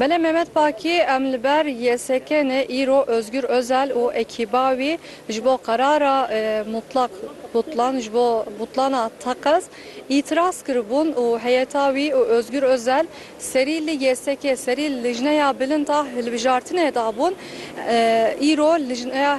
Belê Mehmet Pakî, em li ber YSK'nê îro Ozgur Ozel û ekîba wî ji bo qerara mutlak butlan ji bo butlana teqez îtiraz kiribûn û heyeta wî û Ozgur Ozel serî li YSK'ê serî lijneya bilind a hilbijartinê de bûn îro lijneya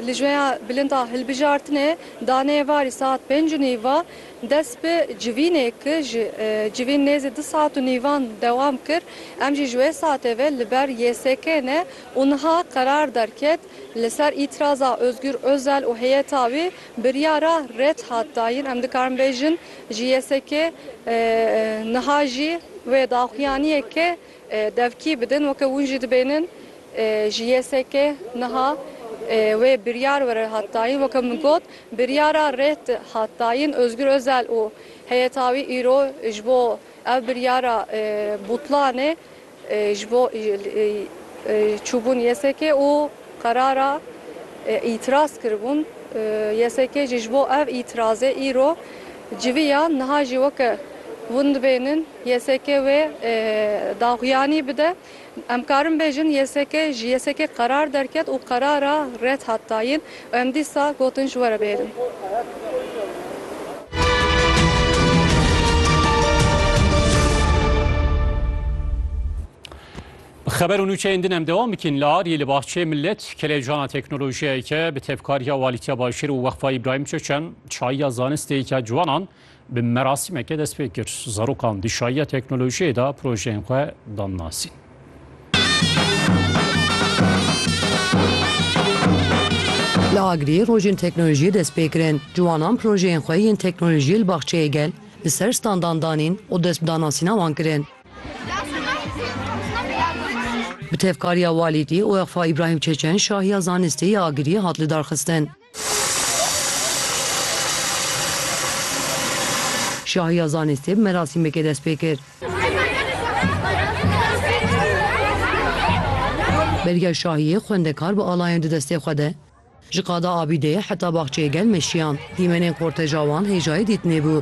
lijneya bilind a hilbijartinê danê varî saet pênc û nîva Dest bi civînê kir, ji civîn nêzî du saet û nîvan dewam kir. Em jî ji wê saetê ve li ber YSK'ê ne û niha qerar derket li ser îtiraza Ozgur Ozel û heyeta wî biryara red hat dayin. Em dikarin bêjin ji YSK'ê niha jî wê daxuyaniyeke Devkî bidin weke hûn jî dibênin ji YSK niha wê biryar were hat dayîn weke min got biryara rêt hat dayîn Ozgur Ozel û heyeta wî îro ji bo ev biryara butlanê ji bo çûbûn YSK û qerara îtiraz kiribûn YSK jî ji bo ev îtirazê îro Civî ya niha jî weke hûn dibêhnin YSK wê daxuyanî bide. Em karin bêjin YSK ji YSK qerar derket û qerara red hat dayîn û em dîsa gotin ji were bêhnin. Bi xeber û nûçeyên din em dewam bikin li Ariyê li Baxçeyê Millet kelejana teknolojiyeke bi tevkariya Walîtiya Başêr û Weqfa Îbrahîm Çeçen çayiya zanisteyeke ciwanan bi merasîmeke dest pê kir. Zarokan di çayiya teknolojiyê de projeyên xwe dan nasîn. Li Agiriyê rojên teknolojiyê dest pê kirin. Ciwanan projeyên xwe yên teknolojiyê li Baxçeyê Gel li ser standan danîn û dest bi danasîna wan kirin. Bi tevkariya Walîtî, Weqfa Îbrahîm Çeçen şahiya zanistê ya Agiriyê hat lidarxistin. Şahiya zanistê bi merasîmekê dest pê kir. Belgeya şahiyê xwendekar bi alayên du destê xwe de, Ji qada Abîdê heta baxçeyê gel meşiyan. Dîmenên korteja wan hêjayê dîtinê bû.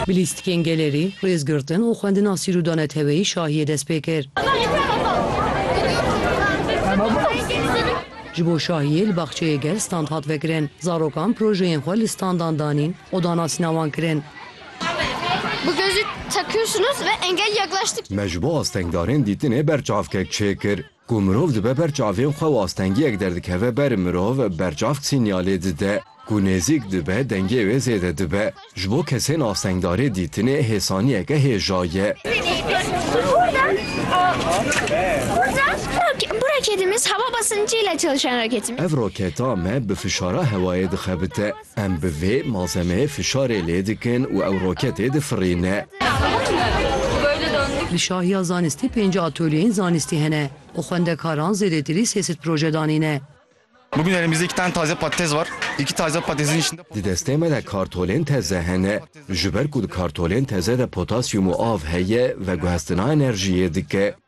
Bi lîstikên gelerî, rêzgirtin û xwendina sîrûda neteweyî şahiyê dest pê kir. Ji bo şahiyê li baxçeyê gel stand hat vekirin. Zarokan projeyên xwe li standan danîn û danasîna wan kirin. Ji bo astengdarên dîtinê berçavkek çêkir. Ku mirov dibe ber çavên xwe û astengiyek derdikeve ber mirov, berçavk sînyalê dide. Ku nêzîk dibe dengê wê zêde dibe. Ji bo kesên astengdarê dîtinê hê saniyeke hêja ye. Ev roketa me bi fişara hewayê dixebite. Em bi vê malzemeyê fişarê lê dikin û ew roketê difirîne. Li şahiya zanistî pênc atölyeyên zanistî hene û xwendekaran zêdetirî sê sed proje danîne. Di destê me de kartolên teze hene. Ji ber ku di kartolên teze de potasyûm û av heye, veguhestina enerjiyê dike.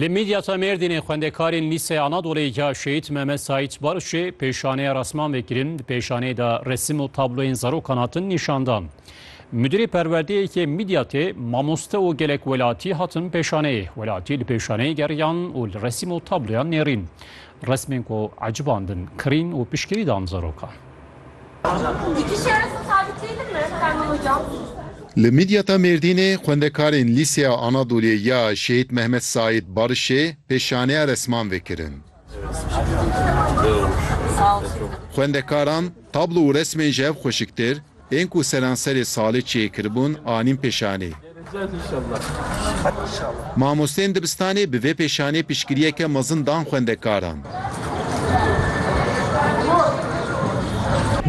Li Midyata Mêrdînê xwendekarên Lîseya Anadolê ya Şehîd Mehmet Saîd Barşê pêşaneya rasman vekirin. Di pêşaneyê de resim û tabloyên zarokan hatin nîşandan. Müdürê perwerdeyê yê Midyatê mamoste û gelek welatî hatin pêşaneyê. Welatî li pêşaneyê geriyan û li resim û tabloyan nêrîn. Resmên ku ecibandin kirîn û pişkirî dan zarokan. Li Midyata Mêrdînê xwendekarên Lîseya Anadoliyê ya Şehîd Mehmet Saîd Barişê pêşaneya resman vekirin. Xwendekaran tablo û resmên ji hev xweşiktir, ên ku seranserê salê çêkiribûn anîn pêşanê. Mamosteyên dibistanê bi vê pêşanê piştgiriyeke mezin dan xwendekaran.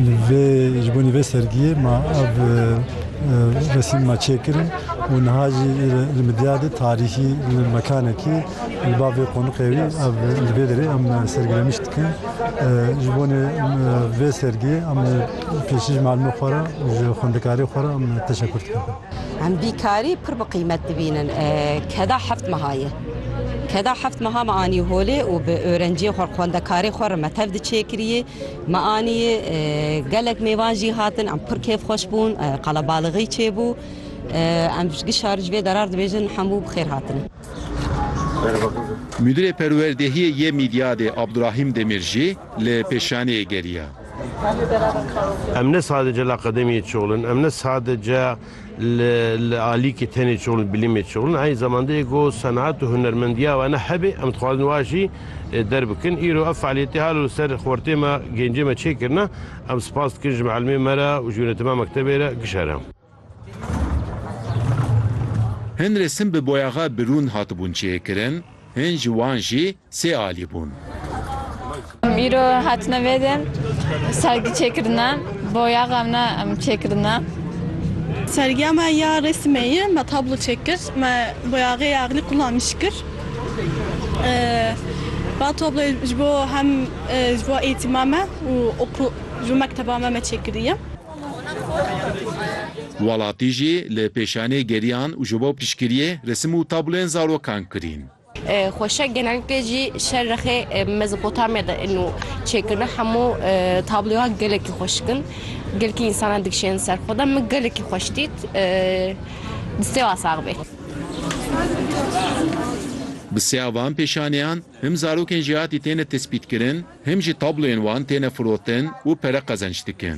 Li vê ji bo vê sergiyê ma ev resîm ma çêkirin û niha jî li Midyadê tarîxî li mekanekî li ba vê qoniqê wî ev li vê derê em sergilemiş dikin. Ji bo vê sergiyê em pêşî ji malimê xwe re ji xwendekarê xwe re em teşekur dikin. Em bîkarî pir bi qîmet dibînin. Keda heft meha ye. Keda heft meha me anî holê û bi örenciyê xwe xwendekarê xwe re me tev di çêkiriyê. Me anî gelek mêvan jî hatin em pir kêfxweş bûn qelebalixî çêbû. Em ji şar ji vê derar dibêjin hemû bi xêr hatin. Mudîrê Perwerdehiyê yê Mîdyadê Abdurahîm Demir jî li pêşaniyê geriya. Em ne sadece li akademiyê çol in, em ne sadece li alîkê tenê çol û bilîmê çol in, eynî zamanda yê ku senaet û hunermendiya we ne hebe em dixwazin wiha jî derbikin. Îro ev fealiyetê halo li ser xortê me, gêncê me çêkirine. Em spas dikin ji mielmê me re û ji yûnetema mektebê re gişere. Hin resim bi boyaxa birûn hatibûn çêkirin, hin ji wan jî sê alî bûn. Îro hatine vê de sergî çêkirine, boyaxa me em çêkirine. Sergiya me ya resimê ye, me tablo çêkir, me boyaxê axlî qulanîş kir. Ba tabloyê ji bo hem ji bo eğîtima me û ji bo mekteba me me çêkiriye. Welatî jî li pêşanê geriyan û ji bo piştgiriyê resim û tablên zarokan kirîn. Xweşe genellikle jî şerrexê Mezopotamya de in û çêkirina hemû tabloyan gelekî xweşik in. Gelkî însanan dikişênin ser xwe de. Min gelekî xweş dît. Bi sêwa sax bê. Bi sêya van pêşaneyan him zarokên jêhatî têne tespîtkirin Him jî tabloyên wan têne firotin û pere qezenç dikin.